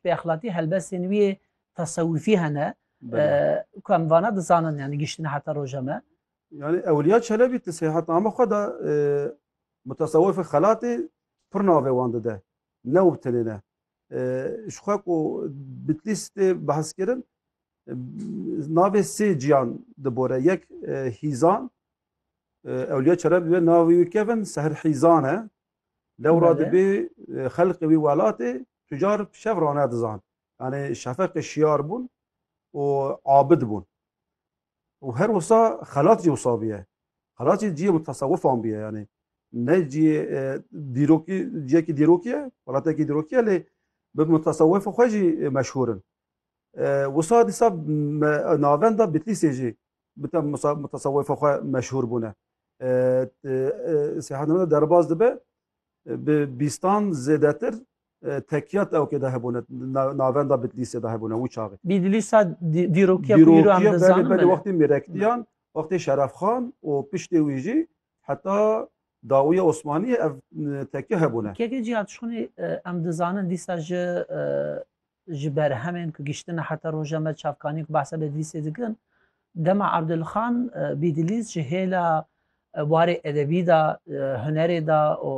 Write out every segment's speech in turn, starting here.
Bi exlatî helbestên wî yê tesewufî hene ku em vana dizanin yanî giştine heta roja me. Yanî Ewliya Çelebî di Sêhatname xwe de mutesewifê xelatê pir navê wan dide. Ne û bi tenê ne. Ji xwe ku Bitlîs tê behskirin navê sê ciyan dibore. Yek Hîzan, Ewliya Çelebî wê navê wî kevin Seher Hîzan e. Dewra dibê xelqê wî welatê tucar şev rane dizan. Yanê şefeqê şiyar bûn û abid bûn. Û her wisa xelat jî wisa bûye. Xelat jî ciyê mutasewifan bûye yanê. Ne ciyê e, dîrokî ciyekî dîrokî ye, welatekî dîrokî ye lê bi mutasewifê xwe jî meşhûr in. Wisa dîsa navenda Bitlîsê jî bi te mutesewifa xwe meşhûr bûne. Sêhanameda derbas dibe bi bîstan zêdetir tekiyat ewkê de hebûne navenda Bitlîsê de hebûne wî çaxê. Bîdlîsa dîrokiya belê wextê mêrektiyan, wextê şerefxan û piştê wî jî heta dawiya Osmaniyê ev tekiya hebûne. Kekê cî ya tişonê em dizanin dîsa ji Ji berhemên ku gihiştine heta roja me çavkanî ku behsa Bedlîsê dikin, dema Abdulxan Bîdlîs ji hêla warê edebî de, hunerê de û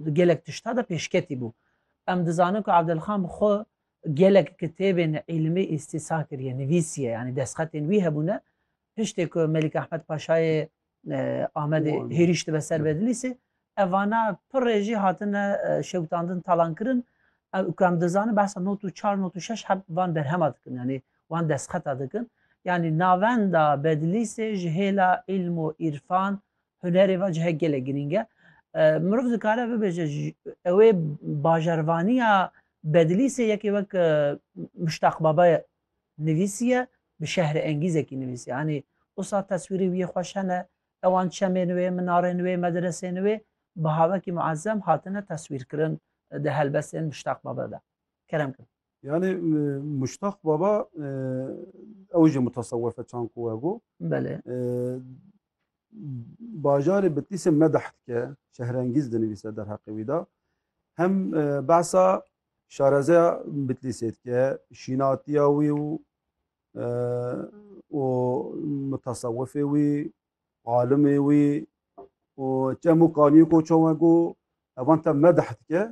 di gelek tişta de pêşketî bû. Em dizanin ku Abdulxan bi xwe gelek kitêbên îlmî îstîsa kiriye, nivîsiye, yanî destxetên wî hebûne, piştê ku Melîk Ehmed Paşayê Amedê hêrîş dibe ser Bedlîsê. Evana pirê jî hatine şewtandin talankirin. Ew ku em dizanin behsa not û çar not û şeş heb van berhema dikin yanî wan destxeta dikin. Yanî navenda Bedlîsê ji hêla îlm û îrfan hunerê ve cihek gelek girîng e. Mirov dikare bibêje ewê bajarvaniya Bedlîsê yekê wek Muştaq Baba Nivîsiye, bi şehre engîzekî nivîsiye. Anî usa teswîrê wî yê xweş hene, ewan çemên wê, minarên wê, medresên wê bi havekî muezzem hatine teswîrkirin di helbestên Muştaq Baba de. Kerem kin. Yanî Muştaq Baba ew jî mutasewefe çand ku we got. Belê. Bajarê Bitlîsê medeh dike, şehrengîz dinivîse derheqê wî de. Hem behsa Şarezeya Bitlîsê dike şînatiya wî û û mutasewifê wî, alimê wî û çem û kaniyê ku çawa ku evan te medih dike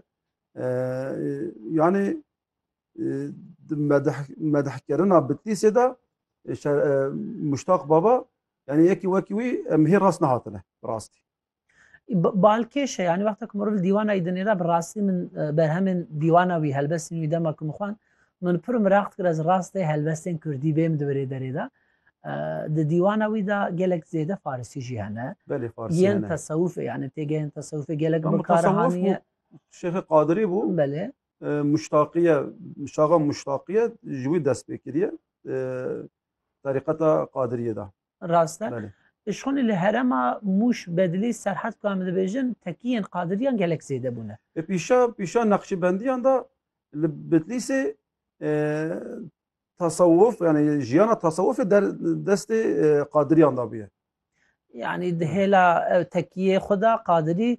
yanî di medih medihkirina Bitlîsê de Muştaq Baba yanî yekî wekî wî em hê rast nehatine rastî. Balkêşe yani wexta ku mirov li dîwana wî dinêre bi rastî min berhemên dîwana wî helbestên wî dema ku min xwend min pir miraq dikir ez rastê helbestên Kurdî bêm di birê derê de di dîwana wî de gelek zêde Farisî jî hene yên tesewufê yani têgehên tesewufê gelek bikariye Şêxê Qadirî bû belê muştaqiye şaxa muştaqiye ji wî dest pê kiriye terîqeta Qadiriyê de Rast e. Belê. Şonê li herema Mûş, Bedlî, Serhet ku em dibêjin tekiyên Qadiriyan gelek zêde bûne. E pîşa pîşa Neqşîbendiyan da li Bitlîsê e, tasawuf yani jiyana tasawufê der destê e, Qadiriyan da bûye. Yani di hêla ew tekiyê xwe da Qadirî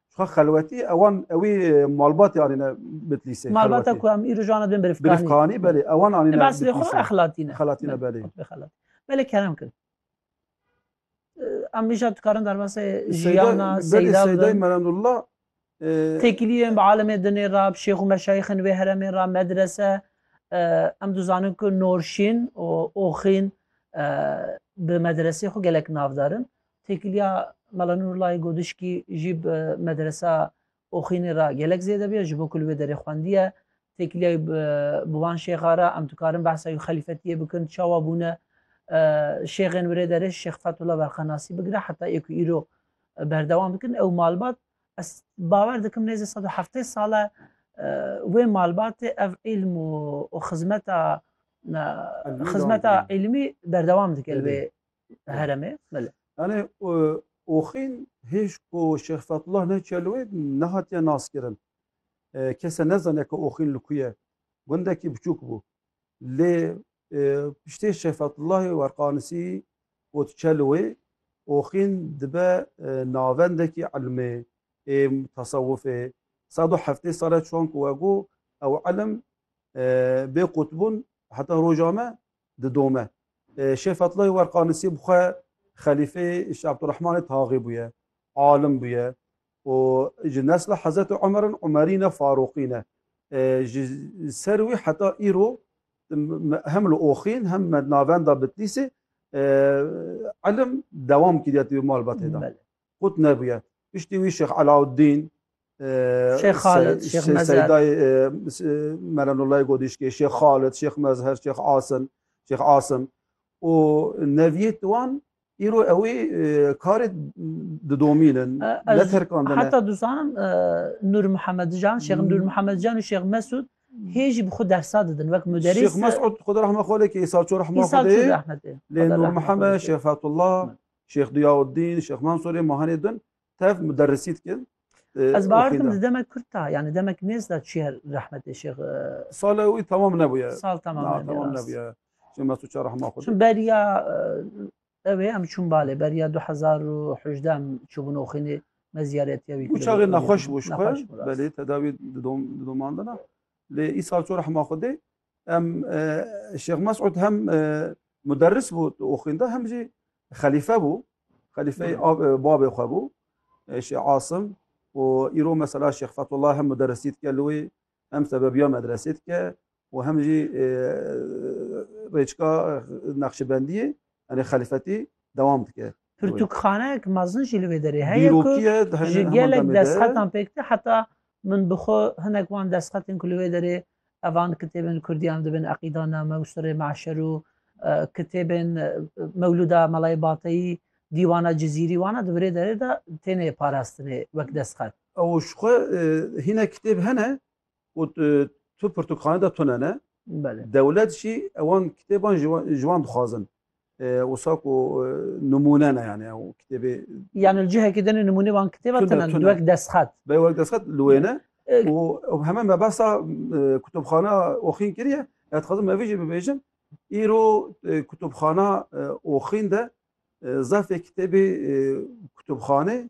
Şuxa xelwetî ewan ewî malbatê anîne Bitlîsê. Malbata ku em îro jana dibin Birifkanî. Birifkanî belê ewan anîne Bitlîsê. Ebasilê xwe exlatîne. Xelatîne belê. Xelatî. Belê kerem kirin. Em îşa dikarin derbasê jiyana Seyda bidin. Seydayê Merendullah Têkiliyên bi alimê dinê ra, bi şêx û meşayîxên wê heremê ra medrese em dizanin ku Norşîn û Oxîn bi medresê xwe gelek navdarin. Têkiliya Mela Nurlayê Godişkî jî bi Medresa Oxînê re gelek zêde bûye, ji bo ku li wê derê xwendiye. Têkiliyayê bi wan şêxa re em dikarin behsa wî xelîfetiyê bikin, çawa bûne şêxên wirê derê Şêx Fethullah Berqenasî bigire heta ê ku îro berdewam dikin. Ew malbat ez bawer dikim nêzî sed û heftê sal e wê malbatê ev îlm û xizmeta xizmeta îlmî berdewam dike li wê heremê belê. Yanê oxîn hêj ku Şêx Fethullah ne çelwê nehatiye naskirin. Kese nezane ku oxîn li ku ye. Gundekî biçûk bû. Lê piştê Şêx Fethullahê werqanisî got çelwê oxîn dibe navendekî ilmê ê tesewufê. Sed û heftê sale çûan ku we got ew ilim bê qutbûn heta roja me didome. Şêh Fethullah Werqanisî bi xwe xelîfeyê Şêh Abdurrahmanê Taxî bûye, alim bûye û ji nesla Hezretê Umer in, Umerî ne, Farûqî ne. Ji ser wî heta îro hem li Oxîn hem navenda Bitlîsê ilim dewam kiriye di malbatê de. qut nebûye. Piştî wî Şêx Elauddîn Şêx Xalid, Şêx Mezher. Seydayê Merenullayê Godîşkê, Şêx Xalid, Şêx Mezher, Şêx Asim, Şêx Asim û neviyê wan îro ew ê karê didomînin, neterkandine. Heta dizanim Nur Muhammed Can, Şêx Nur Muhammed Can û Şêx Mesud hê jî bi xwe dersa didin wek muderris. Şêx Mesud xwe rahma xwe lê kê îsarço rahma xwe dê. Lê Nur Muhammed, Şêx Fethullah, Şêx Diyauddin, Şêx Mansurê ma henê din tev muderrisî dikin. Ez baardim di demek kurt da yani demek nêz da çiye rahmetê şêx. Sala wî tamam nebûye. Sal tamam nebûye. Tamam nebûye. Şêx Mesûd Şah rahma xwe. Çin beriya ew ê em çûn balê beriya 2018 em çûbûn oxînê me ziyaretiye wî. Û çaxê nexweş bû ji xwe belê tedawî didomandina. Lê îsal çû rahma xwe dê Em Şêx Mesûd hem muderris bû û xwînda hem jî xelîfe bû. Xelîfeyê babê xwe bû Şêx Asim û îro mesela Şêx Fethullah hem muderrisî dike li wê hem sebebiya medresê dike û hem jî rêçka Nexşibendiyê yani xelîfetî dewam dike. Pirtûkxaneyek mezin jî li wê derê heye ku ji gelek destxetan pêk tê heta min bi xwe hinek wan destxetên ku li wê derê evan kitêbên kurdiyan dibin Eqîdaname û Sirê Me'şer û kitêbên Mewlûda Melayê Bateyî Dîwana Cizîrî wana di virê derê de têne parastinê wek destxet. Ew ji xwe hinek kitêb hene û tu pirtûkxane de tune ne. Dewlet jî ewan kitêban ji wan dixwazin. Wisa ku nimûne ne yani ew kitêbê. Yani li cihekê din nimûnê wan kitêba tune ne wek destxet. Bê wek destxet li wê ne û heme me behsa kutubxana Oxîn kiriye. Ez dixwazim me vê jî bibêjim. Îro kutubxana Oxîn de zefê kitêbê kutubxanê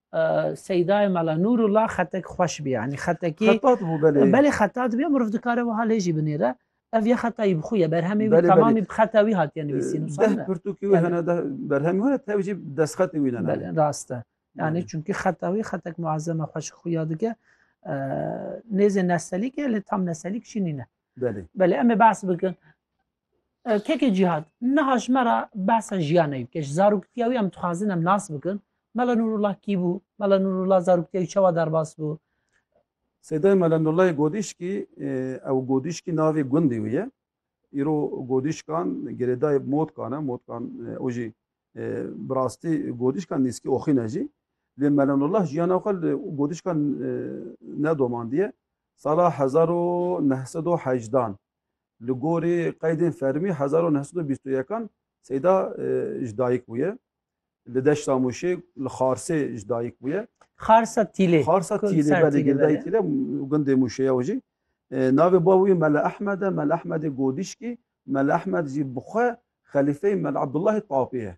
Seydayê Mela Nûrullah xetek xweş bî yanî xetekî Xetat bû belê. Belê xetat bî miriv dikare wiha lê jî binêre. Ev ya xeta yî bi xwe ye berhemê wî temamî bi xeta wî hatiye nivîsîn û sane. Deh pirtûkî wî hene deh berhemî hene tev jî destxetê wî ne ne. Belê rast e. Yanî çunkî xeta wî xetek muezzeme xweşik xwe ya dike. Nêzê neselîk e lê tam neselîk jî nîne. Belê. Belê em ê behs bikin. Keke Cîhad, niha ji me re behsa jiyan neyê bike. Ji zaroktiya wî em dixwazin em nas bikin. Mela Nûrullah kî bû? Mela Nûrullah zaroktiya wî çawa derbas bû? Sêdayê Mela Nûrullahê Godîşkî, ew Godîşkî navê gundê wî ye. Îro Godîşkan girêdayê Motkan e. Motkan û jî bi rastî Godîşkan nîskî Oxîn e jî. Lê Mela Nûrullah jiyana xwe li Godîşkan nedomandiye. Sala hezar û neh sed û hejdan Li gorî qeydên fermî hezar û neh sed û bîst û yekan Seyda ji dayik bûye. Li deşta Mûşê li Xarsê ji dayik bûye. Xarsa Tîlê. Xarsa Tîlê belê girdayê Tîlê gundê Mûşê ye jî. Navê bava wî Mele Ehmed e, Mele Ehmedê Godîşkî, Mele Ehmed jî bi xwe xelîfeyê Mele Abdullahê Tapê ye.